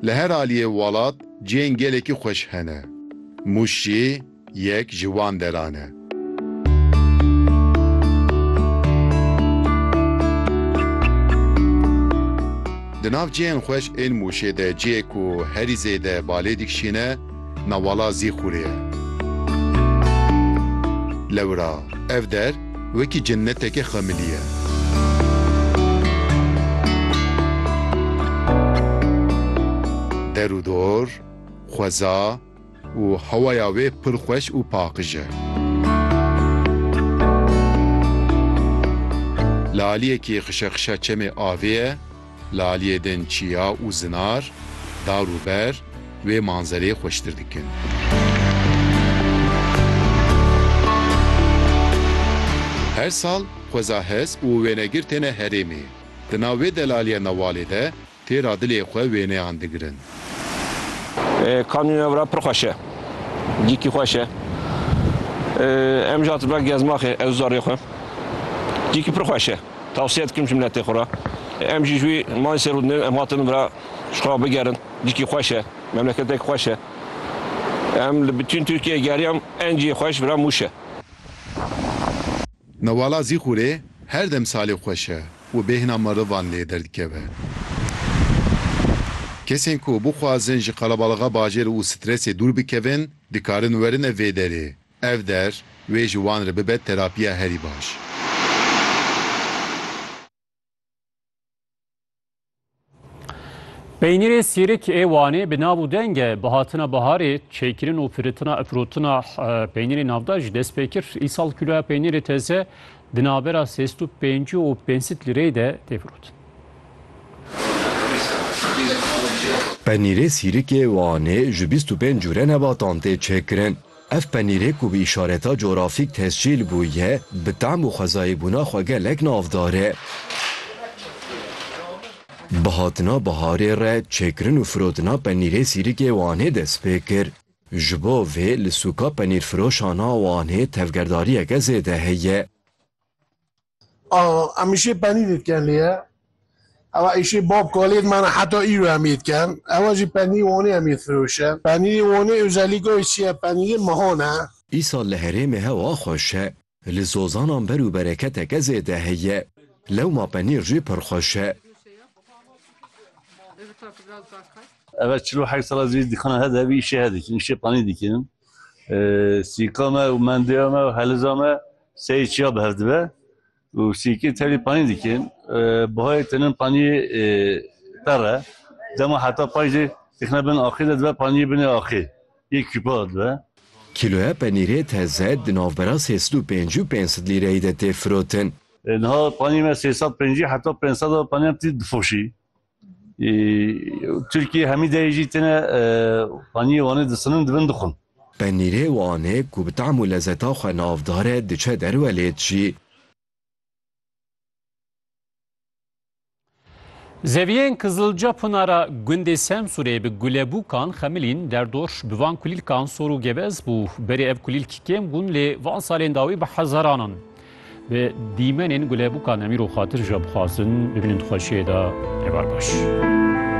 Li her aliyê welat cihên gelekî xweş hene. Mûş jî yek ji wan deran e. Di nav cihên xweş ên Mûşê de cihê ku herî zêde balê dikişîne, Nawala zî xûrê ye. Lewra ev der wekî cenneteke xemilî ye. Der û dor xweza û hewaya wê pir xweş û paqij e. Li aliyekî xişexişa çemê avê ye. Li aliyê din çiya û zinar, dar û ber wê manzereyê xweştir dikin. Her sal xweza hez û wênegir têne herêmê. Di nav vê delaliya newalê de tê ra dilê xwe wêneyan digirin. Kanûna vira pir xweş e. Dîkî xweş e. Em jî hatibûna gezmaxê ew zarê xwe. Dîkî pir xweş e. Tewsiye dikim ji miletê xwe re em jî ji wî malê sêr û din em hatin vir e ji xwe re bigerin. Dîkî xweş e, memleketekî xweş e. Em li bitîn Tirkiyeyê geriyan enciyê xwe ji vir e Mûş e. Newala Zîxurê her dem salê xweş e û bêhna merivan lê derdikeve. Kesên ku bixwazin ji qelebalixê bajêr û stresê dûr bikevin dikarin werin ev vê derê. Ev der, wê ji wan re bibe terapiya herî baş. Peynîrê sêrik ê Wanê bi nav û deng e. Bi hatina baharê, çêkirin û firitina firotina peynîrê navdar jî dest pê kir. Îsal kîloya peynîrê teze di navbera sêst û pêncî û pênc sît lîreyê de tê firotin. Peynîrê sîrik ê Wanê ji bîst û pênc cûre nebatan tê çêkirin. Ev penîrê ku bi îşareta corafîk tescîl bûye, bi tam û xwezayê bûna xwe gelek navdar e. Bi hatina biharê re çêkirin û firotina penîrê Sîrikê Wanê dest pê kir. Ji bo vê li sûka penîrfiroşan a Wanê tevgerdariyeke zêde heye. Em îşê penî dê dikin lê ye. Ewa îşê bab kalê dimena heta îro em yê dikin. Ewa jî penî Wanê em yê difiroşin. Penîrê Wanê ozellîka wê çi ye? Penîrê mehan e. Îsal li herêmê hewa xweş e. Li zozanan ber û bereketeke zêde heye. Lewma penîr jî pir xweş e. Ewa çil û heft sal e zî dikana he de vî îşê he dikin. Îşê penî dikin. Sîka me û mendeya me û heliza me Sey çiya bi hev dibe û sîkê terî panî dikin. Bihayê tenin panîyê per e. Dema heta pay jî dixine bin axê de dibe panîyê binê axê yê kûpa de dibe. Kîloya penîrê teze di navbera sê sed û pêncî û pênc sed lîreyî de tê firotin. Niha panîyê me sê sed û pencî heta pênc sed a panîyan tî difoşî. Tirkî hemî deyê jî têne paniyê Wanê disinin di bin dixwin. Penîrê Wanê ku bi tehm û lezeta xwe navdar e diçe derwe lê dijî. Zeviyên Kizilca Pınara gundê Semsûrê bi gulebûkan xemilîn derdor bi van kulîlkan sor û gevez bû. Berê ev kulîlk kêm bûn lê van salên dawî bi hezaranan. Bi dîmenên gulebûkan em îro xatir ji we bixwazin bibînin di xweşiyê de. Heval baş.